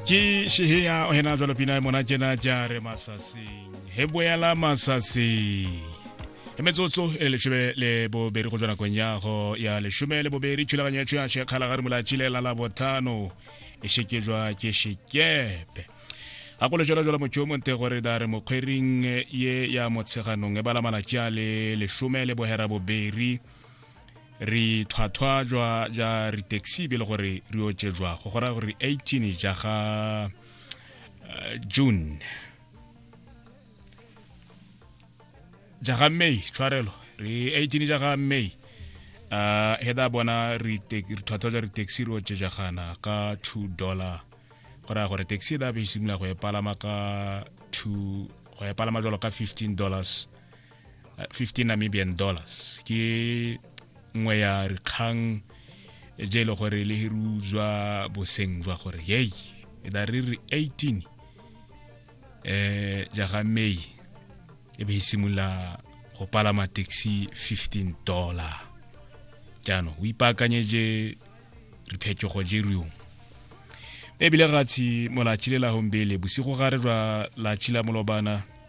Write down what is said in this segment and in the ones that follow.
ke sheheya o hena jalo pina e mona kena ja re masaseng he boela masaseng e metsotso e leshome le bobedi go tswa nakong ya go ya leshome le bobedi thulaganyo ya tšhoya shekgala ga re molatšile la la bothano e shekejwa ke shekepe ga go lejalo jalo motho yo monte gore da re mokgwering ye ya motsheganong e bala malatši a le leshome le bohera bobedi re tlhwatlhwa jwa ja re taxi be le gore re otse jwa go gora gore 18 ja ga eh, june ja ga may tshwarelo re 18 ja ga may uh, he da bona re tlhwatlhwa ja re taxi re otse jagana ka 2 dollar go raya gore taxi da be e simolola go e palama ka 2 go e palama jalo ka 15 dollars uh, 15 namibian dollars ke nngwe ya dikgang je e le gore le hiruzwa boseng jwa gore yei e da re re 18 eh ja ga may e be e simolola go palama taxi 15 dollar jaanong o ipaakanyetse diphetogo je riong ebile gatshi molatšhile la hombele bosigo gare jwa latšhila molobana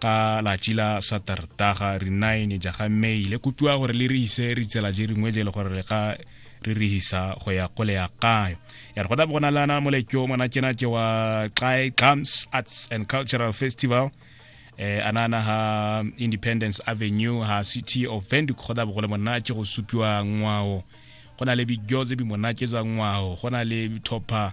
ka latši la satertaga re nine ja ga may le kopiwa gore le re ise re tsela je ringwe je le gore le ga re re hisa go ya go le ya kayo ya re gona bona lana molekyo mona kena ke wa xi drums arts and cultural festival eh anana ha independence avenue ha city of venduc go da bogole monna ke go supiwa ngwao go na le bigyo tse bi monna ke za ngwao go na le topper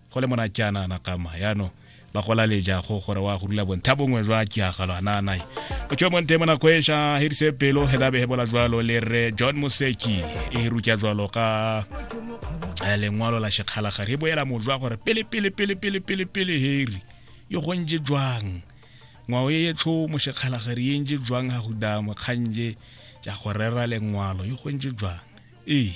go le mona jaana nakama yaanong ba gola lejago gore wa go dula bontha bongwe jwa kiagalo ananae o tswe monte mo nako eša hirise pelo he labe he bola jwalo le re john moseki e rutya jwalo ka eh, lengwalo la shekgalagare he boela mojwa gore pele pele pele pele pele pele heri e gontse jwang ngwao e etsho moshekgalagare e ntse jwang ga go damo kganje ja go rera lengwalo e gontse jwang ee